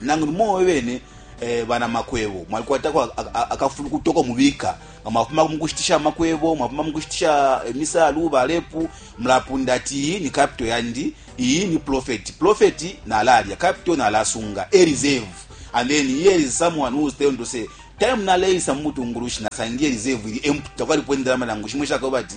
Nangu ni mwe bene banamakwebo mwalikwatako akafulukutu ako mubika nga mwafuma mu kushitisha amakwebo, mwafuma mu kushitisha imisalu, balepu, mulapunda ati iyi ni kapito yandi, iyi ni profeti, profeti nalalya, kapito nalasunga, e reserve. And then here is someone who is telling to say, time naleisa mu butungulushi nasangiye reserve ili empty, takwalipo indalama nangu shimo ishakaba ati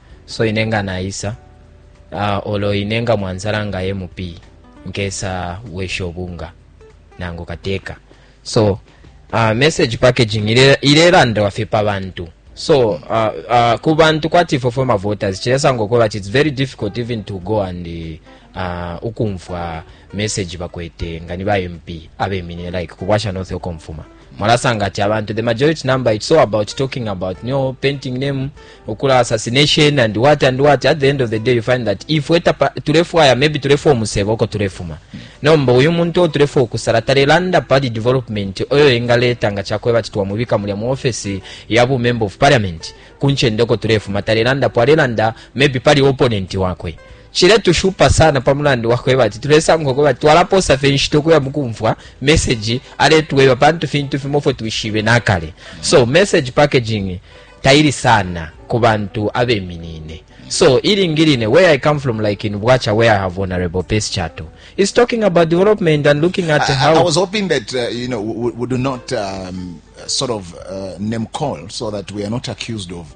so ine nga naisa uh, olo ine nga mwanzala nga mp nkesa wesha obunga nangu kateka so uh, message packaging ilelandawa fye pa bantu so uh, uh, ku bantu kwati ifwe fwe mavoters chilesanga okola ti its very difficult even to go and uh, ukumfwa message bakwete nga ni ba mp abeminine like kubwasha north okomfuma mwalasanga ati abantu the majority number it's all about talking about no painting name okula assassination and what and what at the end of the day you find that if we tapa tulefwaya maybe tulefwa omusebo oko tulefuma nomba uyu muntu o tulefwa okusala talelanda pali development oyo engaleta nga chakweba ati twamubika mulya mu office ya bu member of parliament kunchende oko tulefuma talelanda po alelanda maybe pali opponent wakwe Ciletushupa sana pa mulandu wa kweba ati tulesanga ukweba ati twalapoosa fye inshita ukuya mu kumfwa meseji aletweba pantu fintu fimo ifyo twishibe na kale. So message packaging taili sana ku bantu abeminine. So ilingi line where I come from like in Bwacha where I have vulnerable pace chato is talking about development and looking at I, how I was hoping that uh, you know we, we do not um, sort of uh, name call so that we are not accused of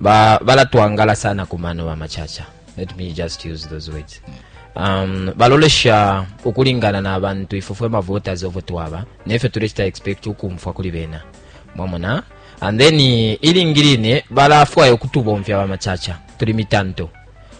ba balatwangala sana ku mano ba machacha let me just use those words um, balolesha ukulingana na bantu ifwe fwe mavoters ovo twaba nefyo tulechita expect ukumfwa kuli bena mwamona and then ilingi line balafwaya ukutubomfya ba machacha tuli mitanto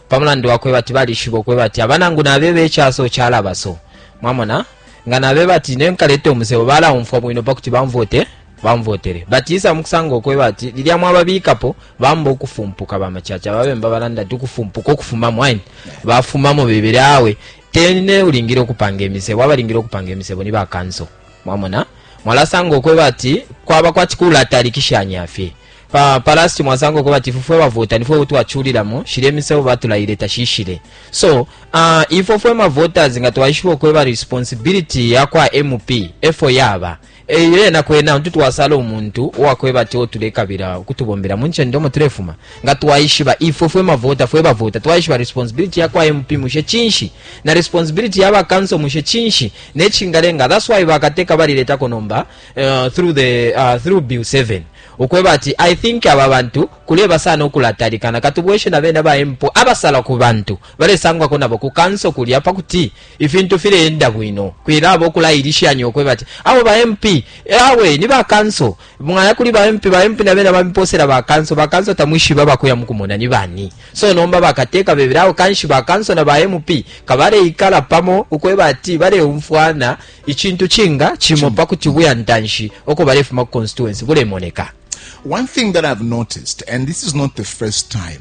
pamulandu wakweba ati balishiba okweba ati abanangu nabeba ekyaso kyalabaso mwamona nga nabeba ati nenkaleta omusebo balaumfwa bwino pakuti banvote bamvotele bati isa mukusanga ukweba ati lilya mwababikapo bamba ukufumpuka bamacaca ababemba balanda ati ukufumpuka ukufumamo aini bafumamo bebele awe tene ulingile ukupanga imisebo abalingile ukupanga imisebo ni bakanso mwamona mwalasanga ukweba ati kwaba kwati kulatalikishanya fye pa palasti mwasanga ukweba ati fufwe bavota nifwe utwachulilamo shile imisebo batulaile tashishile so uh, ifwe fwe mavoters nga twaishiba ukweba responsibility yakwa mp efo yaba E Lyena kwena untu twasala umuntu uwa kweba ati uo tulekabila ukutubombela mu ncende umo tulefuma, nga twaishiba ifwe fwe mavota fwe bavota, twaishiba responsibility ya kwa MP mushe cinshi, na responsibility ya ba council mushe cinshi, ne cingalenga that's why bakateka baliletako nomba uh, through the uh, through bill 7 ukweba ati i think aba bantu kuleba sana ukulatalikana katubweshe na bene ba MP abasala ku bantu balesangwako nabo ku council kulya pa kuti ifintu fileenda bwino kwilaba ukulailishanya ukweba ati awo ba MP eh, awe ni ba kanso mwaya kuli ba MP ba MP na bena bamiposela ba kanso ba kanso tamwishiba bakuya mukumona ni bani so nomba bakateka bebera awo kanshi ba kanso na ba MP kabale ikala pamo ukweba ati bale umfwana icintu cinga chimo pakuti buya ntanshi oko bale fuma constituency bule moneka one thing that i've noticed and this is not the first time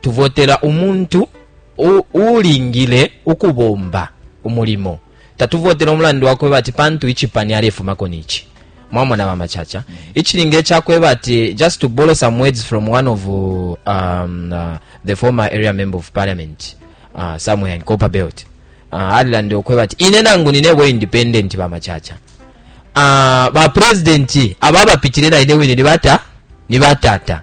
Tuvotela umuntu uulingile ukubomba umulimo. Tatuvotela umulandu wakweba ati pantu icipani alefumako nici. Mwamona ba Machacha? Mm -hmm. Icilingile cakweba ati just to borrow some words from one of um, uh, the former area member of parliament uh, somewhere in Copper Belt. Uh, alilande okweba ati ine nangu ninebo independent ba Machacha. Uh, ba president aba bapitile na ine wine ni bata ni batata.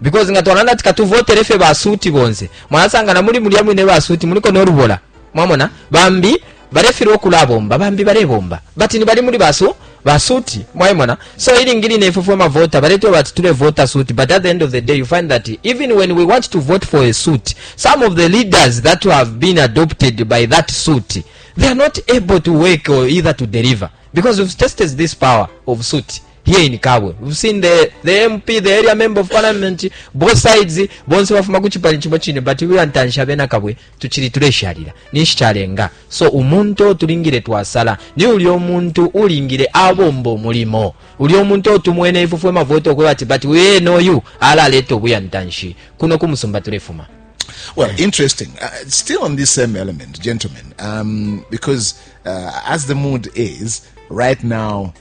because nga twalanda ati katuvotele fye basuti bonse mwalasanga na muli mulya mwine basuti muliko nolubola mwamona bambi balefilwa okulabomba bambi balebomba but ni bali muli basu basuti mwaimona so ilingi line ifwe fwe mavota baletwa bati tulevota suti but at the end of the day you find that even when we want to vote for a suit some of the leaders that have been adopted by that suit they are not able to work or either to deliver because we've tested this power of suit Lyeni kabwe seen the, the MP the area member of parliament both sides bonse bafuma ku chipani chimo chine but we antansha bena kabwe tuchiri tuleshalira nishi chalenga so umuntu tulingire twasala ni uli omuntu ulingire abombo mulimo uli omuntu otumwene ifufwe mavoto kwa ati but we know you ala leto buya ntanshi kuno kumusumba tulefuma Well, interesting. Uh, still on this same element, gentlemen, um, because uh, as the mood is right now,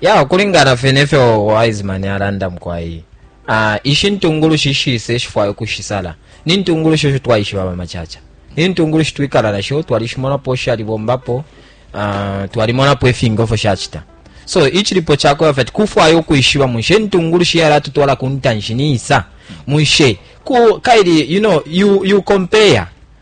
ya ukulingana fye nefyo wiseman alanda mukwai uh, ah, ishi ntungulushi shise shifwaya ukushisala ni ntungulushi esho twaishiba bamacaca ni ntungulushi twikala nasho twalishimonapo shalibombapo uh, ah, twalimonapo ifingofo shacita so ichilipo chako yafati kufwaya ukwishiba munshe ntungulushi yala tutwala kuntanshi niisa munshe ku kaili you know you you compare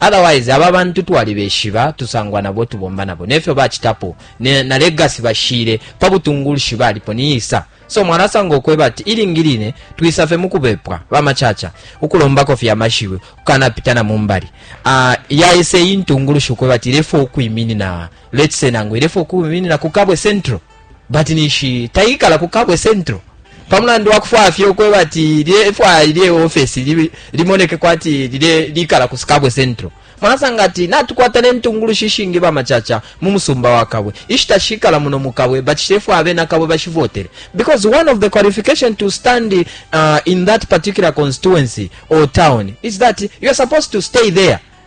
Otherwise aba bantu twalibeshiba, tusangwa nabo, tubomba nabo, nefyo bacitapo, na legacy bashile pa butungulshi balipo ni isa. So mwalasanga ukweba ati ilingi line twisa fye mukubepwa, ba Macaca, ukulombako fye amashiwi, ukukana pita na mumbali. Ah, yaisa iyi ntungulushi ukweba ati ilefwa ukwiminina, let's say nangu ilefwa ukwiminina ku Kabwe Central. But ninshi taikala ku Kabwe Central pa mulandu wa kufwaya fye ukweba ati lye ifwaya ilye office li, limoneke kwati lile likala ku Kabwe Central mwanasanga ati natukwata ne ntungulushi ishingi ba machacha mu musumba wa Kabwe ishita shikala muno mu Kabwe but shefwa abena Kabwe bashivotele because one of the qualification to stand uh, in that particular constituency or town is that you are supposed to stay there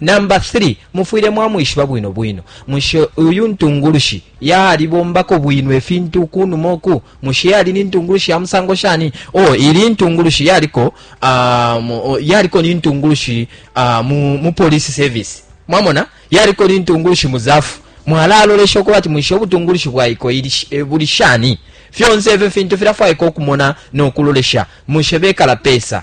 Namba 3, mufwile mwamwishiba bwino bwino. Mushe uyu ntungulushi yalibombako bwino ifintu ukunuma uku? Mushe yali ni ntungulushi ya musango shani? Oh, ili intungulushi yaliko, um, yaliko ni ntungulushi uh, mu, mu police service. Mwamona? Yaliko ni ntungulushi mu zafu. Mwalalolesha ukuba ati mwishe ubutungulushi bwaiko ili, e, buli shani? Fyonse ifyo fintu filafwaika ukumona no kulolesha. Mushe bekala pesa.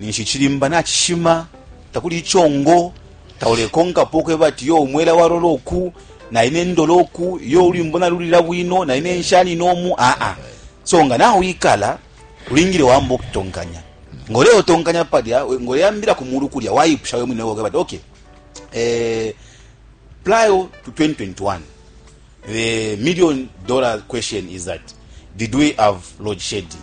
ninshi icilimba nacishima takuli icongo taulekonkapo ukweba ati yo umwela walola oku naine ndola oku yo ulwimbo nalulila bwino naine nshanine omu aa so nga nawikala ulingile wamba okutonkanya ngoleotonkanya palya ngoleyambila ku mulu kulya wayipusha we mwine woke bati okay eh, prior to 2021 the million dollar question is that did we have load shedding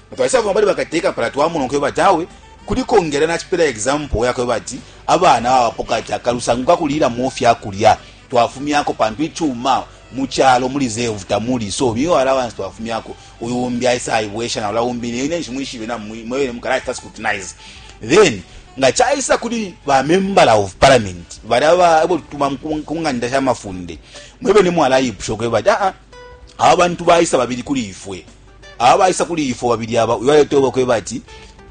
Twalisa fuma pali bakateka pala twamona nkwe bati awe kuli kongela na chipela example yakwe bati abana babapoka ati akalusangu kakulila mu fya kulya twafumyako pantu ichuma mu chalo muri zevu tamuri so miyo allowance twafumyako uyu umbi aisa aibwesha na ula umbi ne nenshi mwishibe na mwele mukala ita scrutinize then nga chaisa kuli ba member of parliament bali aba ebo tuma kunganda sha mafunde mwebe ni mwala ipusho kweba ah, ah abantu baisa babili kuli ifwe abaisa kuli ifwe babili aba uyo ayetoba kweba ati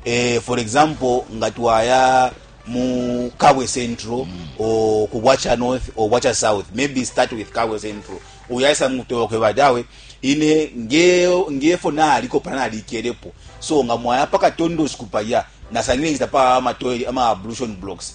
eh, for example nga twaya mu kabwe central mm. o ku bwacha north o bwacha south maybe start with kabwe central uyo ayisa mukutoba kweba ati awe ine nge ngefo naliko pana alikelepo so nga mwaya paka tondo sikupa ya nasangire nzita pa ama toilet ama ablution blocks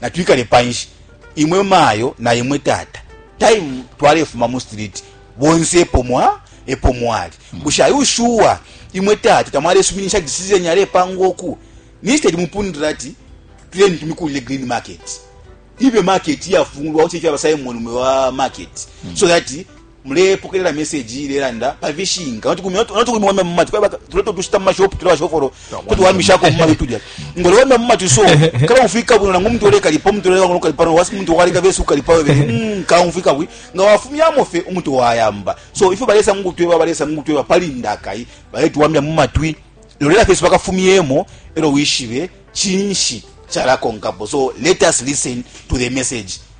Natwikale panshi, imwe mayo na imwe tata. Time twalefuma mu street, bonse epo mwa, epo mwali. Hmm. Bushe are you sure imwe tata tamwalesuminisha decision yalepangwa uku? Instead mupundira ati tuleni tumikulile green market. Ibe market yafungulwa uche ifyaba Simon mwe wa market. Hmm. So that Mulepokelela meseji iilelanda pa fishinka no tukumiwamya mu matwi. Kwena tuleta utushita mu mashopu tuli bashofolo uto tuwamishako mu matwi tulya. Nga ulewamya mu matwi so, kalaumfwika bwino nangu umuntu ulekalipa, umuntu uleleka no kukalipa no wasuka umuntu waleka bese ukukalipa we bene, kaumfwika bwi. Nga wafumyamo fye, umuntu wayamba. So ifyo balesa mu kutweba, balesa mu kutweba pali ndakai baletuwamya mu matwi. Lolela fye bakafumyemo e lyo wishibe cinshi calakonkapo. So let us listen to the message.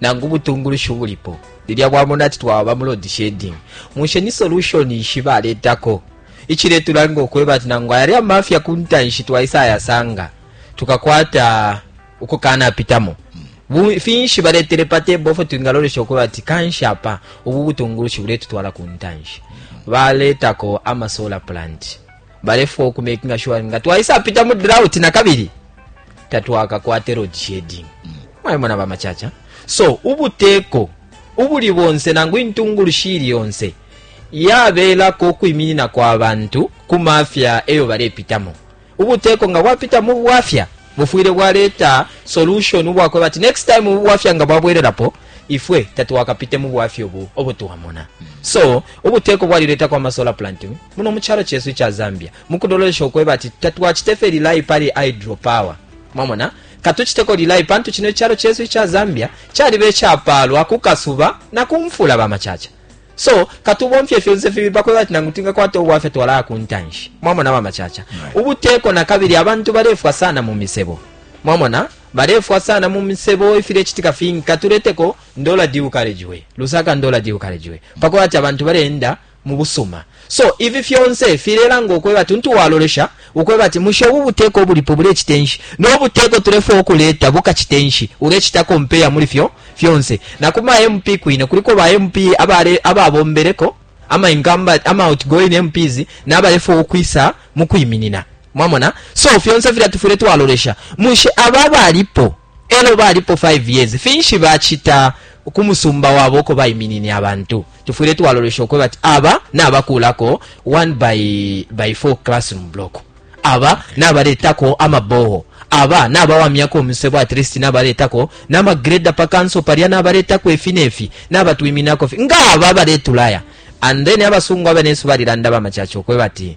nangu butungulushi ubulipo lilya bwamona ati twawaba mu load shedding mushe ni solution nshi baletako ichiletulanga ukweba ati nangu ayali amafya kuntanshi twaisa ayasanga tukakwata ukukana pitamo finshi baletele pa table ofo twingalolesha ukweba ati kanshi apa ubu butungulushi buletutwala kuntanshi baletako ama solar plant balefwa uku making sure nga twaisapita mu drought na kabili tatwakakwate road shading mm. mwayimona bamacaca so ubuteko ubuli bonse nangu intungulushi ili yonse yabelako ukwiminina kwa bantu ku mafya eyo balepitamo ubuteko nga bwapita mu bwafya bufwile bwaleta solution ubwakwe bati next time ubwafya nga bwabwelelapo ifwe tatwakapite mu bwafya obu obutuwamona so ubuteko bwaliletako amasola planting Muno mu calo cesu ica Zambia, mu kulolesha ukweba ati tatwacite fye rely pali hydropower, mwamona, katuciteko rely pantu cino icalo cesu ica Zambia caliba icapaalwa ku kasuba na ku mfula, ba Macaca. So, katubomfye fyonse fibili pa kweba ati nangu twingakwata ubwafya twalaya ku ntanshi, mwamona, ba Macaca. Ubuteko na kabili abantu balefwa sana mu misebo, mwamona, balefwa sana mu misebo, ifilecitika fingi. Katuleteko Ndola DU Carriageway, Lusaka Ndola DU Carriageway, pa kweba ati abantu bale-enda mu busuma. So, ifi fyonse filelanga ukwebati untu walolesha ukwebati, mushe ubu buteko ubulipo bulecite nshi, no buteko tulefwaya ukuleta bukacite nshi? Ulecita compare muli fyo fyonse. Na ku ma MP kwine, kuliko ba MP abale, ababombeleko, ama incumbent, ama outgoing MPs, na balefwaya ukwisa mukwiminina. Mwamona? So, fyonse filya tufwile twalolesha. Mushe aba abalipo. Elo balipo 5 years, finshi bacita kumusumba wabo uko baiminine abantu? Tufwile twalolesha ukwebati aba nabakulako 1 by by 4 classroom block, aba nabaletako ama boho, aba nabawamyako umusebo at least nabaletako nama grader pa council palya nabaletako ifi nefi nabatwiminako fye nga aba baletulaya and then abasungu abanensu balilanda bamacaca ukwebati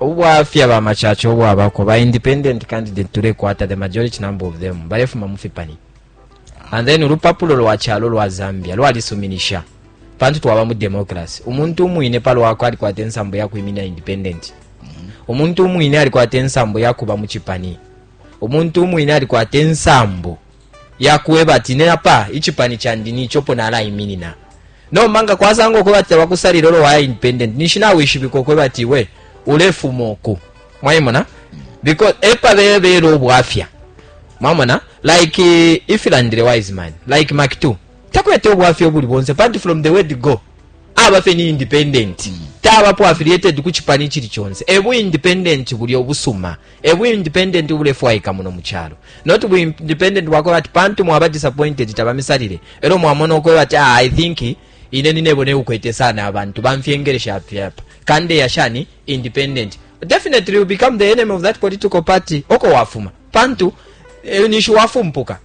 Ubwafya ba macaca ubwabako, ba independent candidate tulekwata, the majority number of them, balefuma mufipani. And then ulupapulo lwa chalo lwa Zambia, lwa lisuminisha. Pantu tuwaba mu demokrasi. Umuntu umwine palo wako alikwate nsambu ya kuimina independent. Umuntu umwine alikwate nsambu ya kuba mu chipani. Umuntu umwine alikwate nsambu. yakwebati ine apa icipani candi nici opo nalaiminina. Nomba nga kwasangwa ukwebati tabakusalile olo waya independent ninshi nawishibika ukwebati iwe ulefuma uku. Mwaimona? Because epa bebele ubwafya. Mwamona? Like eh, if ilandile wise man, like Mark 2. Takwete ubwafya obuli bonse panti from the word go. Aba fe ni independent. Taba po affiliated ku chipani chili chonse. Ebu independent buli obusuma. Mwamona? E bu independent ubulefwaika muno mu calo. Not bu independent bwakweba ati pantu mwaba disappointed tabamisalile. Elo mwamona ukweba ati ah, I think ine ninebo ne ukwete sana abantu bamfyengelesha apyapa. Kande ya shani independent. Definitely you become the enemy of that political party. Oko wafuma. Pantu e, nishu wafumpuka.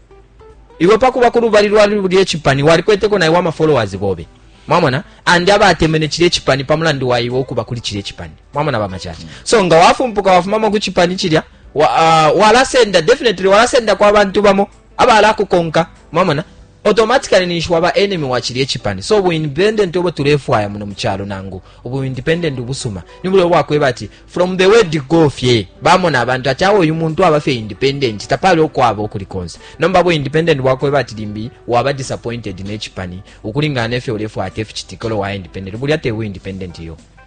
Iwe pakuba ku lubali lwa lubye chipani walikweteko na iwa ma followers bobe. Mwamona? Andi abatemene chile chipani pamulandu wa iwe okuba kuli chile chipani. mwamona bamacaca so nga wafumpuka wafumamo ku cipani cilya ah, walasenda uh, definitely walasenda kwa bantu bamo abalakukonka mwamona automatically ninshi waba enemy wa cilya ecipani so bu independent obo tulefwaya muno mucalo nangu ubu independent ubusuma nibulio bwakweba ati from the word go fye bamona abantu ati awo uyu muntu aba fye independent tapali okwaba okuli konse nomba bu independent bwakweba ati limbi waba disappointed necipani ukulingana nefyo ulefwaya ati eficitikolo wa independent bulya te bu independent yo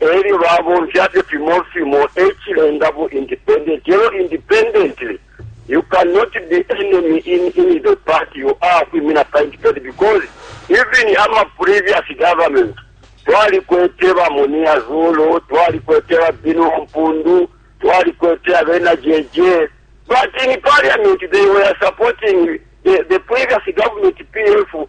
e lyo babomfya fye fimo fimo, e cilenga bu independent e lyo independently you can not be enemy in in the party you are kwimina pa independent because even ama previous government twalikwete ba Munia Zulu twalikwete ba Binu Mpundu twalikwete abena JJ but in parliament they were supporting the, the previous government PF